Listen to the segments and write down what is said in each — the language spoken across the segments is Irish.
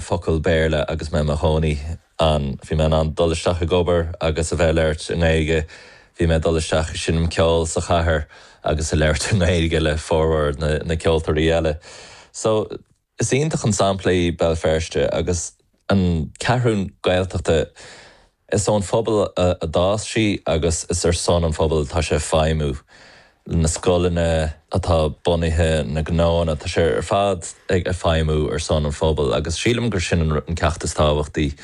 focal Béarla agus mé i mo chónaí ann. Bhí mé in ann dul isteach ag obair agus a bheith ag labhairt i nGaeilge. Bhí mé ag dul isteach ag seinm ceoil sa chathair agus ag labhairt i nGaeilge le formhór na ceoltóirí eile. So, is iontach an sampla í Béal Feirste agus an Ceathrún Gaeltachta. Is ón phobal a d'fhás sí agus is ar son an phobail atá sé ag feidhmiú, na scoileanna atá bunaithe, na gnóanna, tá sé ar fad ag feidhmiú ar son an phobail agus sílim gur sin an ceacht is tábhachtaí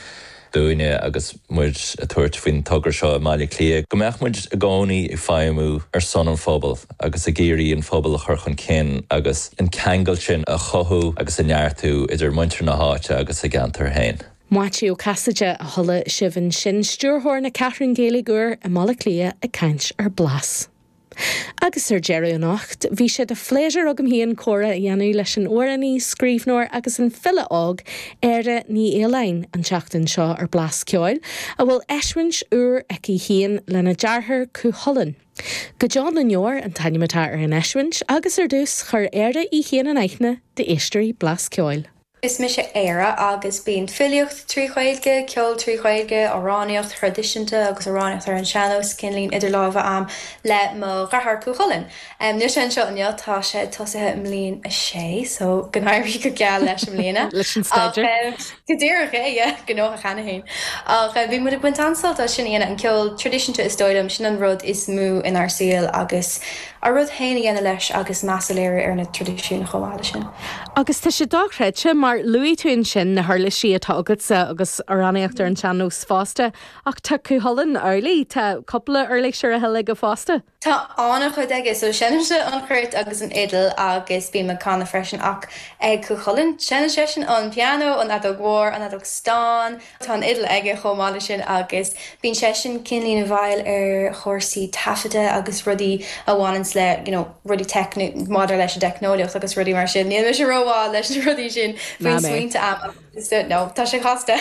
dúinne agus muid ag tabhairt faoin togra seo i mBaile Átha Cliath, go mbeadh muid i gcónaí ag feidhmiú ar son an phobail agus ag iarraidh an pobal a chur chun cinn agus an ceangal sin a chothú agus a neartú idir muintir na háite agus a gceantar féin. Maitiú Ó Casaide a chuala sibh ansin, Stiúrthóir na Ceathrún Gaeilge úr i mBaile Átha Cliath ag caint ar Blas. Agus ar deireadh anocht bhí sé de phléisiúr agam féin comhrá a dhéanamh leis an amhránaí, scríbhneoir agus an file óg, Éire Ní Fhaoláin an tseachtain seo ar Blas Ceoil, a bhfuil eisiúint úr aici féin lena deartháir Cú Chulainn. Go Deo na nDeor an t-ainm atá ar an eisiúint agus ar dtús chuir Éire í féin in aithne d'éisteoirí Blas Ceoil. Is mise Éire agus bíonn filíocht trí Ghaeilge, ceol trí Ghaeilge, amhránaíocht thraidisiúnta agus amhránaíocht ar an seannós cineáilín idir lámha a'am le mo dhreatháir Cú Chulainn. Níl sé anseo inniu, tá sé tosaithe i mbliain a sé so go n-éirí go geal leis i mbliana. leis an staidéar. Go díreach é, yeah, gnóthach cheana féin. Ach bhí muid ag baint an-sult as sin a dhéanamh, an ceol traidisiúnta is dóigh liom, sin an rud is mó inár saoil agus ár rud féin a dhéanamh leis agus meas a léiriú ar na traidisiúin chomh maith leis sin. Agus tá sé dochreidte, mar luaigh tú ansin na huirlisí atá agatsa agus amhránaíocht ar an tsean-nós fosta, ach tá Cú Chulainn amhlaidh, tá cúpla uirlis ar a thoil aige fosta. Tá an-chuid aige, so seinnimse an chruit agus an fhidil agus bím ag canadh freisin ach ag Cú Chulainn, seineann seisean an pianó, an fheadóg mhór, an fheadóg stáin, Tá an fhidil aige chomh maith leis sin agus bíonn seisean cineáilín, bhuel, ar chúrsaí taifeadta agus rudaí a bhaineanns le, you know, rudaí teicnic, maidir leis an dteicneolaíocht agus rudaí mar sin. Níl mise ró-mhaith leis na rudaí sin bíonn smaointe a'm agus do, no, tá sé casta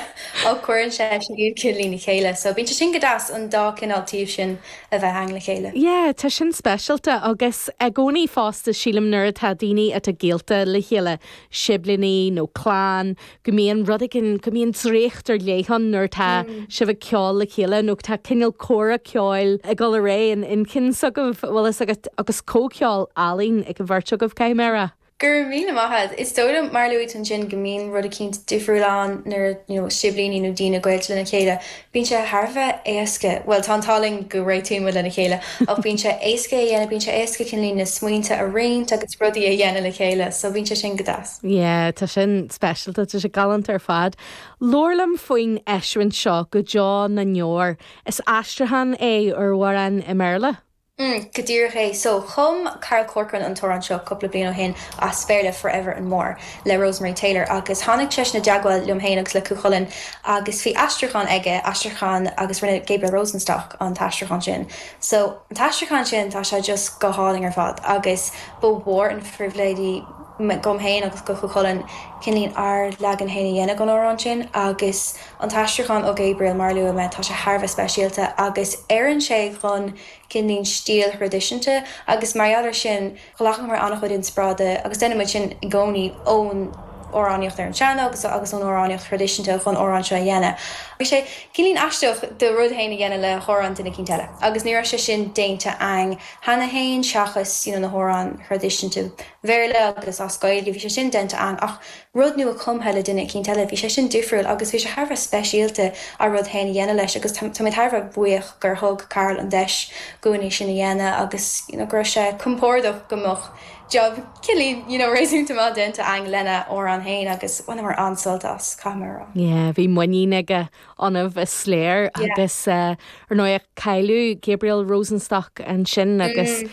ach cuireann seisean iad cineáilín le chéile so bíonn sé sin go deas an dá cineál taobh sin a bheith ann le chéile. Yeah, tá sin speisialta agus i gcónaí fosta sílim nuair atá daoine atá gaolta le chéile, siblíní nó clann, go mbíonn rud éigin, go mbíonn draíocht ar leith ann nuair atá sibh ag ceol le chéile nó tá cineál comhrá ceoil ag dul ar aghaidh in inchinn s'agaibh, an bhfuil a fhios agat, agus comhcheol álainn ag an bheirt agaibh, caithfidh mé a rá. Go raibh míle maith a'd. Is dóigh liom, mar a luaigh tú ansin, go mbíonn rud eicínt difriúil ann nuair a, you know, siblíní nó daoine gaolta lena chéile. Bíonn sé thar a bheith éasca, bhuel, tá an t-ádh linn go réitíonn muid lena chéile, ach bíonn sé éasca é a dhéanamh, bíonn sé éasca cineáilín na smaointe a roinnt agus rudaí a dhéanamh le chéile, so bíonn sé sin go deas. Yeah, tá sin speisialta, tá sé galánta ar fad. Labhair liom faoin eisiúint seo, Go Deo na nDeor. Is aistriúchán é ar amhrán i mBéarla? Mm, go díreach é. So, chum Carl Corcoran an t-amhrán seo cúpla bliain ó shin as Béarla, Forever and More, le Rosemary Taylor, agus tháinig seisean i dteagmháil liom féin agus le Cú Chulainn agus bhí aistriúchán aige, aistriúchán, agus rinne Gabriel Rosenstock an t-aistriúchán sin. So, an t-aistriúchán sin, tá sé just go hálainn ar fad agus ba mhór an phribhléid, dhom féin agus go Chú Chulainn, cineál ár leagan féin a dhéanamh den amhrán sin. Agus an t-aistriúchán ó Gabriel, mar a luaigh mé, tá sé thar a bheith speisialta agus oireann sé dhon cineál stíl thraidisiúnta agus mar gheall air sin ghlacamar an-chuid inspioráide, agus déanann muid sin i gcónaí, ón amhránaíocht ar an sean-nós agus ón amhránaíocht thraidisiúnta dhon amhrán seo a dhéanamh. Bhí sé cineál aisteach do rud féin a dhéanamh le hamhrán duine eicínt eile agus ní raibh sé sin déanta aghainn. cheana féin seachas you know na hamhráin thraidisiúnta Bhéarla agus as Gaeilge, bhí sé sin déanta aghainn ach rud nua cumtha le duine eicínt eile, bhí sé sin difriúil agus bhí sé thar a bheith speisialta ár rud féin a dhéanamh leis agus táimid thar a bheith buíoch gur thug Carl an deis dhúinn é sin a dhéanamh agus you know go raibh sé compordach go mbeadh job cineál you know réasúnta maith déanta aghainn lena amhrán féin agus bhaineamar an-sult as, caithfidh mé a rá. Yeah, bhí muinín aige. ionaibh is léir agus ar ndóigh cailleadh Gabriel Rosenstock ansin agus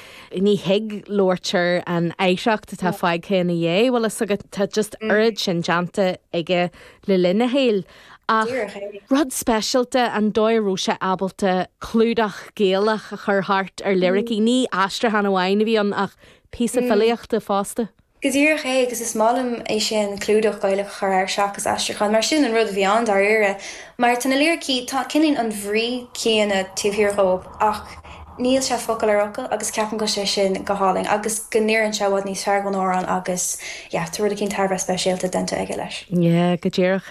ní thig labhairt ar an oidhreacht atá fágtha ina dhiaidh bhfuil fhios agat tá just oiread sin déanta aige le linn a shaoil ach rud speisialta an dóigh a raibh sé ábalta clúdach Gaelach a chur thart ar liricí, ní aistriúchán amháin a bhí ann ach píosa filíochta fosta. Go díreach é, agus is maith liom é sin, clúdach Gaelach a chur air seachas aistriúchán, mar sin an rud a bhí ann, dáiríre. Mar tá na liricí, tá, cineál an bhrí céanna taobh thiar dhóibh ach níl sé focal ar fhocal agus ceapaim go bhfuil sé sin go hálainn agus go n-oireann sé i bhfad níos fearr dhon amhrán agus yeah tá rud eicínt thar a bheith speisialta déanta aige leis. Yeah, go díreach é.